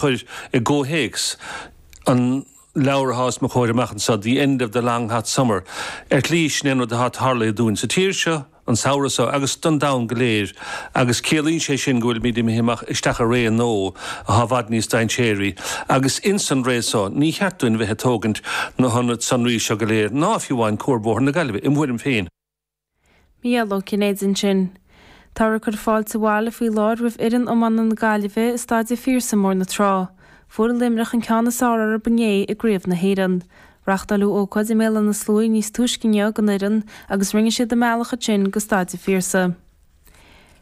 chur i gcomhthéacs an leabhair atá os mo chomhair amach anseo, The End of the Long Hot Summer, ar shlí níl aon rud atá tarlaithe dúinn sa tír seo an samhradh seo agus don domhan go léir agus ciallaíonn sé sin go bhfuilimid imithe amach isteach i ré nua atá i bhfad níos dainséaraí agus ins an ré seo ní ceart dúinn bheith ag tógaint na hionad sonraí seo go léir ná fiú amháin cuarbhóthar na Gaillimhe, im thuairim féin. Micheál Ó Cinnéide ansin. Táthar ag cur fáilte abhaile faoi láthair roimh fhoireann iománaíochta na Gaillimhe i Staid an Phiarsaigh i mBóthar na Trá. Fuair Luimneach an ceann is fearr orthu inné i gCraobh na hÉireann. Reachtáileadh ócáid i mBéal Átha na Sluaighe níos túisce inniu don fhoireann agus rinne siad a mbealach ansin go Staid an Phiarsaigh.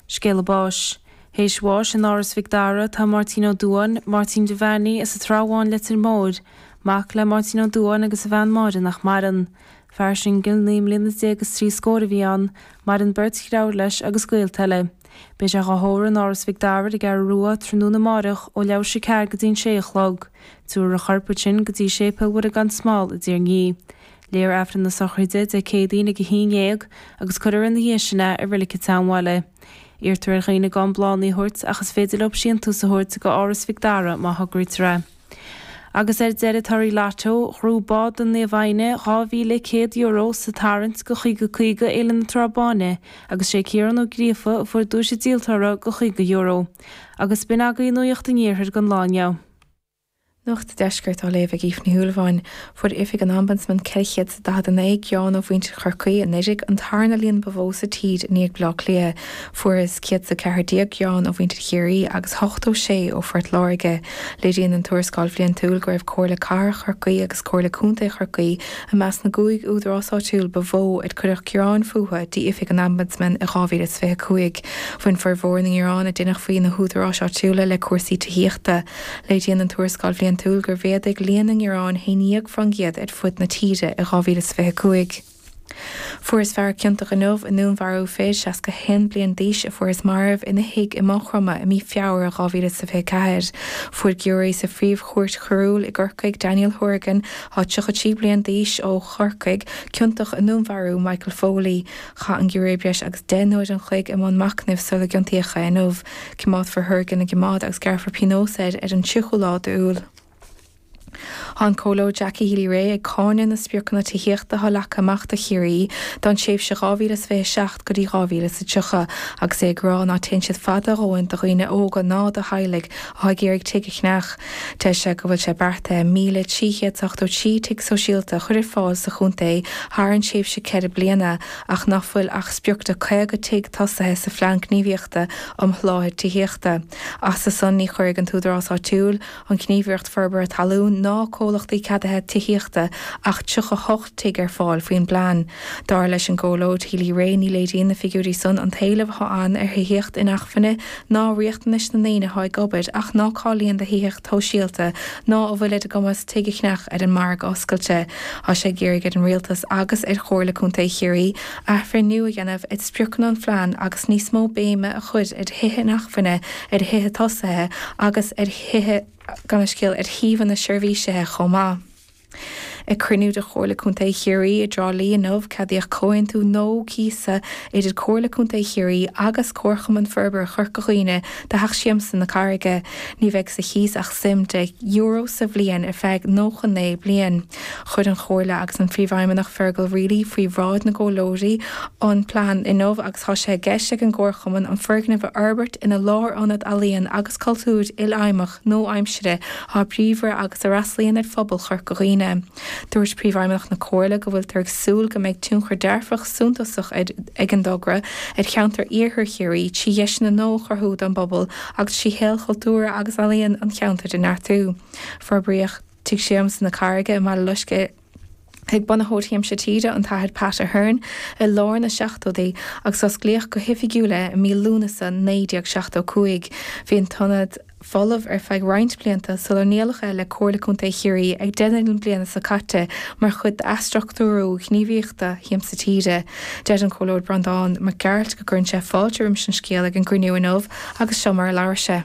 Scéala báis. Théis bháis in Áras Mhic Dara tá Máirtín Ó Duáin, Máirtín Devaney as an Trá Bháin Leitir Móir, mac le Máirtín Ó Duáin agus a bhean Máire nach maireann. Fear singil naoi mbliana déag is trí scór a bhí ann, maireann beirt dreabhar leis agus gaolta eile. Beidh sé dhá thórramh in Áras Mhic Dara ar an gCeathrú Rua tráthnóna amáireach ó leathuair théis a ceathair go dtí'n sé a chlog. Tiúrfar a chorp ansin go dtí Séipéal Mhuire gan Smál i dTír an Fhia. Léifear Aifreann na Sochraide Dé Céadaoin ag a haon dhéag agus cuirfear ina dhiaidh sin é i Rilic a' tSeanbhaile. Iarrtar ar dhaoine gan bláthannaí a thabhairt ach is féidir leob síntús a thabhairt go Áras Mhic Dara má thograítear é. Agus ar deireadh torthaí lotto, bhuaigh Club Báid Naomh Éanna €2,100 sa tarraingt Caoga Caoga Fhéile na Trá Báine agus sé Ciarán Ó Gríofa a fuair duais an díoltóra de €50. Agus b'in agaí nuaíocht an Iarthair don lá inniu. Nuacht an Deiscirt á léamh ag Aoife Ní Shúilleabháin. Fuair Oifig an Ombudsman 449 ngearán ó mhuintir Chorcaí anuraidh, an tarna líon ba mhó sa tír i ndiaidh Bhleá Cliath. Fuarthas 114 gearán ó mhuintir Chiarraí agus 86 ó Phort Láirge. Léiríonn an Tuarascáil Bhliantúil go raibh Comhairle Cathrach Chorcaí agus Comhairle Contae Chorcaí i measc na gcúig údarás áitiúil ba mhó ar cuireadh gearáin fúthu go hOifig an Ombudsman i 2025. Bhain formhór na ngearán a deineadh faoi na húdaráis áitiúla le cúrsaí tithíochta. Léiríonn an Tuarascáil Bhliantúil gur mhéadaigh líon na ngearán a haon déag fán gcéad ar fud na tíre i 2025. Fuarthas fear ciontach inniu i ndúnmharú fir 61 bliain d'aois a fuarthas marbh ina thigh i Maigh Chromtha i mí Feabhra 2024. Fuair giúiré sa Phríomh-Chúirt Choiriúil i gCorcaigh Daniel Hourigan, 33 bliain d'aois, ó Chorcaigh, ciontach i ndúnmharú Michael Foley. Chaith an giúiré breis agus deich n-uair an chloig i mbun machnaimh sula gciontaíodh é inniu. Cimeádfar Hourigan i gcimeád agus gearrfar pionós air ar an tríochú lá d'Iúil. Tá an Comhairleoir Jackie Healy-Rae ag cáineadh na spriocanna tithíochta atá leagtha amach do Chiarraí don tréimhse 2027 go dtí 2030 agus é ag rá ná téann siad fada a dhóthain do dhaoine óga ná do theaghlaigh atá ag iarraidh tigh a cheannach. Deir sé go bhfuil sé beartaithe 1,383 tigh sóisialta a chur ar fáil sa chontae thar an tréimhse ceithre bliana, ach nach bhfuil ach sprioc de 50 tigh tosaithe sa Phlean Gníomhaíochta um Sholáthar Tithíochta. As san ní chuirfidh an tÚdarás Áitiúil, an Ghníomhaireacht Forbartha Talún ná Comhlachtaí Ceadaithe Tithíochta ach 38 tigh ar fáil faoin bplean. Dar leis an gComhairleoir Healy Rae ní léiríonn na figiúirí san an t-éileamh atá ann ar thithíocht inacmhainne ná riachtanais na ndaoine atá ag obair ach ná cáilíonn do thithíocht shóisialta ná a bhfuil ar a gcumas tigh a cheannach ar an margadh oscailte. Tá sé ag iarraidh ar an Rialtas agus ar Chomhairle Contae Chiarraí athbhreithniú a dhéanamh ar spriocanna an phlean agus níos mó béime a chur ar thithe inacmhainne, ar thithe tosaithe agus ar thithe gan scéim ar shuíomhanna seirbhísithe chomh maith. Ag cruinniú de Chomhairle Contae Chiarraí i dTrá Lí inniu, ceadaíodh comhaontú nua cíosa idir Comhairle Contae Chiarraí agus Comharchumann Forbartha Chorca Dhuibhne do Theach Siamsa na Carraige. Ní bheidh sa chíos ach suim €10 sa bhliain ar feadh 99 bliain. Chuir an Chomhairle agus an Príomhfheidhmeannach Fergal Reilly faoi bhráid na gcomhairleoirí an plean inniu agus tá sé i gceist ag an gComharchumann an foirgneamh a fhorbairt ina lárionad ealaíon agus cultúir ilfheidhmeach nua-aimsire atá bríomhar agus a fhreastlaíonn ar phobal Chorca Dhuibhne. Dúirt Príomhfheidhmeannach na Comhairle go bhfuiltear ag súil go mbeidh tionchar dearfach suntasach ag an dtogra ar cheantar Iarthar Chiarraí trí dheiseanna nua a chruthú don bpobal agus trí shaol cultúrtha agus ealaíon an cheantair a neartú. Forbraíodh Tigh Siamsa na Carraige i mBaile Loiscthe. ag bunaitheoir Shiamsa Tíre, an tAthair Pat Ahern, i lár na seachtóidí agus osclaíodh go hoifigiúil é i mí Lúnasa 1975. Bhí an t-ionad folamh ar feadh roinnt blianta sular ndíoladh é le Comhairle Contae Chiarraí ag deireadh na bliana seo caite mar chuid d'athstruchtúrú gníomhaíochtaí Shiamsa Tíre. Deir an Comhairleoir Breandán Mac Gearailt go gcuireann sé fáilte roimis an scéal ag an gcruinniú inniu agus seo mar a labhair sé.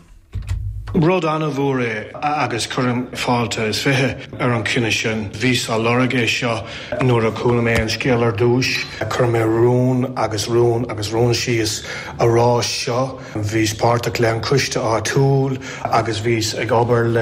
Rud an-mhór é agus cuirim fáilte is fiche ar an chinneadh sin. Bhíos á lorg é seo nuair a chuala mé an scéal ar dtúis. Chuir mé rún agus rún agus rún síos a rá seo. Bhíos páirteach le an coiste áitiúil agus bhíos ag obair le